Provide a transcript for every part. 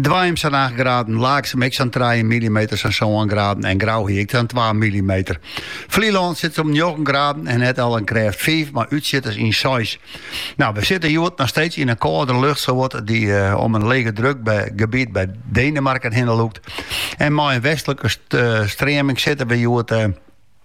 Dwaam sa'n 8 graden, Laaksum ek sa'n trije millimeter, sa'n sân graden en Grou hie ek sa'n twa millimeter. Flylân sit om njoggen graden en net al in krêft fiif, mar útsjitters yn seis. Nou, we sitte hjoed noch steeds yn in kâlde lucht sawat dy't eh, om in lege druk b- gebiet by Denemarken hinne lûkt. En mei in westlike st- eh, streaming sitte we hjoed eh,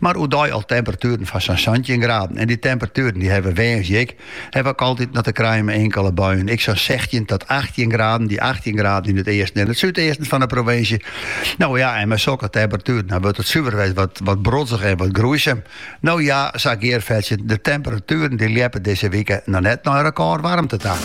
Mar oerdei al temperatueren fan sa'n santjin graden. En dy temperatueren dy hawwe woansdei ek. Hawwe ek altyd noch te krijen mei inkele buien, ek sa'n sechstjin tot achttjin graden. Dy achttjin graden yn it easten en it súdeasten fan 'e provinsje. No ja, en mei sokke temperatueren dan wurdt it suver wat wat brodzich en wat groeisum. No ja, sa gearfetsjend, de temperatueren dy ljeppe dizze wike noch net nei rekôrwarmte ta.